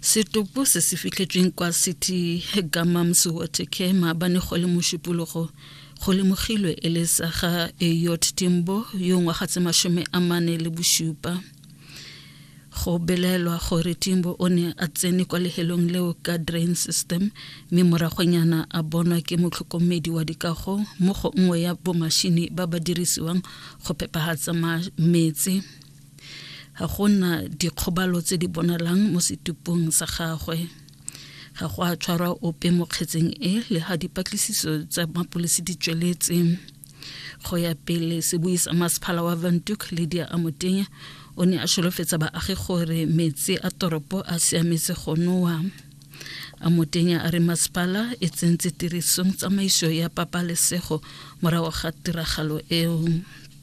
setopo se se fitlhetsweng kwa city gamams watercare maabane go le mošupologo go lemogilwe e le sa ga eyot timbo yo ngwaga tse masome a mane le bosupa go belaelwa gore timbo o ne a tsene kwa lehelong leo ka drain system mme moragonyana a bonwa ke motlhokomedi wa dikago mo go nngwe ya bomashini ba ba dirisiwang go phepagatsa metsi ga go na dikgobalo tse di bonalang mo setupong sa gagwe ga go a tshwarwa ope mo kgetseng e le ga dipatlisiso tsa mapolisi di tsweletse go ya pele se buisa masephala wa vantuk ledia a motenya o ne a solofetsa baagi gore metsi a toropo a siametse go nowa a motenya a re masepala e tsentse tirisong tsamaiso ya pabalesego morago ga tiragalo eo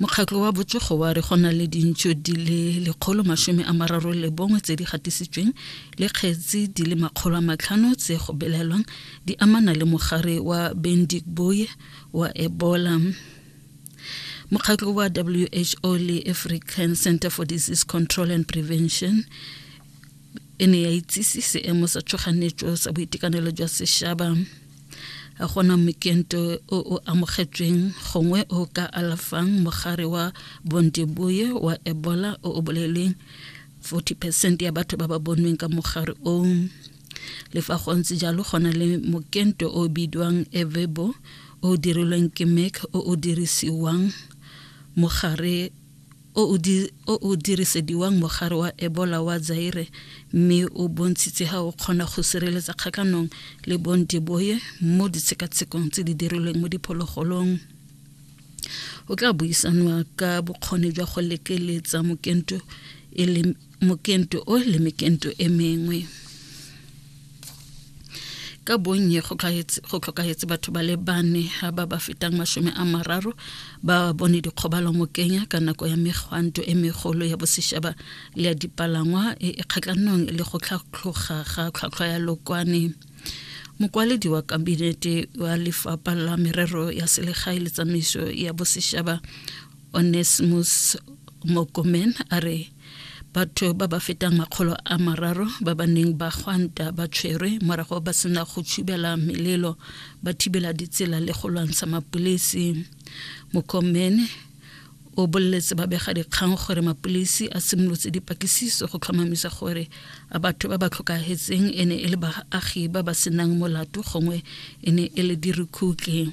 mokgatlo wa botsogo wa re go na le dintšo di le lekgolo masome a mararo le bongwe tse di gatisitsweng le kgetsi di le makgolo a matlhano tse go belelwang di amana le mogare wa bendik boye wa ebola mokgatlo wa who le african center for disease control and prevention e ne ya itsise seemo sa tshoganetso sa boitekanelo jwa sešaba gona mokento o o amogetsweng gongwe o ka alafang mogare wa bonteboye wa ebola o o bolelweng 40 percent ya batho ba ba bonweng ka mogare o le fa go ntse jalo gona le mokento o bidiwang evebo o dirilweng ke mac o o dirisiwang mogare o o, di, o o dirisediwang mogare wa Ebola wa Zaire mme o bontshitse ga o kgona go sireletsa kgakanong le bondeboye mo ditshekatshekong tse di dirilweng mo diphologolong o tla buisanwa ka bokgoni jwa go lekeletsa mokento e le mokento o le mekento e mengwe ka bonnye go tlhokagetse batho ba le bane ba ba fetang masome a mararo ba bone dikgobalo mo kenya ka nako ya megwanto e megolo ya bosešaba le ya dipalangwa e, e kgatlhanong le go tlhatlhoga ga tlhwatlhwa ya lokwane mokwaledi wa kabinete wa lefapha la merero ya selegae le tsamaiso ya bosešaba onesmus mokomen a re Batho ba ba fetang makgolo a mararo ba ba neng ba gwanta ba tshwerwe morago ba sena go tshubela melelo ba thibela ditsela le go lwantsha mapolisi mokomene o boleletse babegadikgang gore mapolisi a simolotse dipatlisiso go tlhomamisa gore a batho ba ba tlhokagetseng e ne e le baagi ba ba senang molato gongwe e ne e le dirukhuki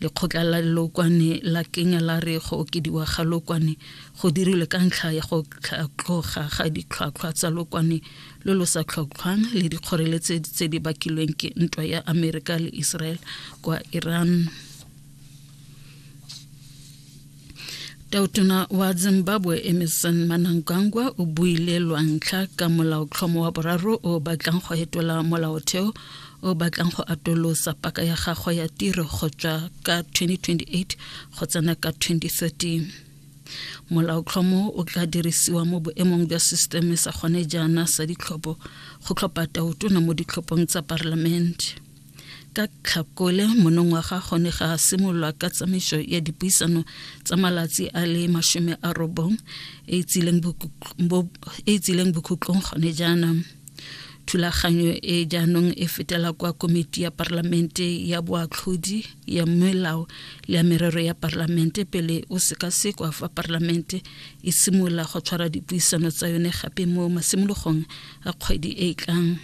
lekgotla la lokwane la kenya la re go okediwa ga lokwane go dirilwe ka ntlha ya go tlhatlhoga ga ditlhwatlhwa tsa lokwane lo lo sa tlhotlhwang le dikgoreletsi tse di bakilweng ke ntwa ya amerika le israel kwa iran tautona wa zimbabwe emerson manangangwa o buile lwantlha ka molaotlhomo wa boraro o batlang go etola molaotheo o batlang go atolosa paka ya gagwe ya tiro go tswa ka 2028 go tsena ka 2030 molaotlhomo o tla dirisiwa mo boemong jwa sisteme sa gone jaana sa ditlhopho go tlhopha tautona mo ditlhophong tsa parlamente ka tlhakole monongwaga gone ga simolola ka tsamaiso ya dipuisano tsa malatsi a le masome a robong e e tsileng bokhutlong gone jaanang thulaganyo e jaanong e fetela kwa komiti ya parlamente ya boatlhodi ya melao le ya merero ya parlamente pele o sekasekwa fa parlamente e simolola go tshwara dipuisano tsa yone gape mo masimologong a kgwedi e e tlang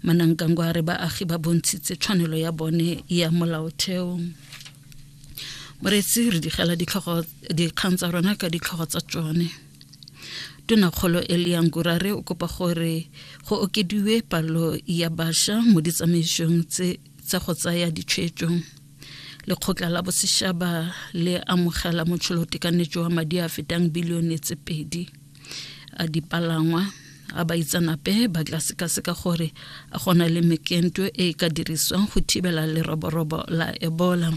manangkangwa a re baagi ba bontshitse tshwanelo ya bone ya molaotheo moreetsi re digela dikgang tsa rona ka ditlhogo tsa tsone tonakgolo eliang kurare o kopa gore go okediwe palo ya bašwa mo ditsamaisong tse tsa go tsaya ditshwetso lekgotla la bosetšhaba le amogela motšholotekanetso wa madi a fetang bilione tse pedi a dipalangwa a baitsanape ba tla sekaseka gore a gona le mekento e e ka dirisiwang go thibela leroborobo la ebola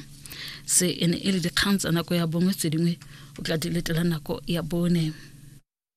se e ne e le dikgang tsa nako ya bongwe tse dingwe o tla di letela nako ya bone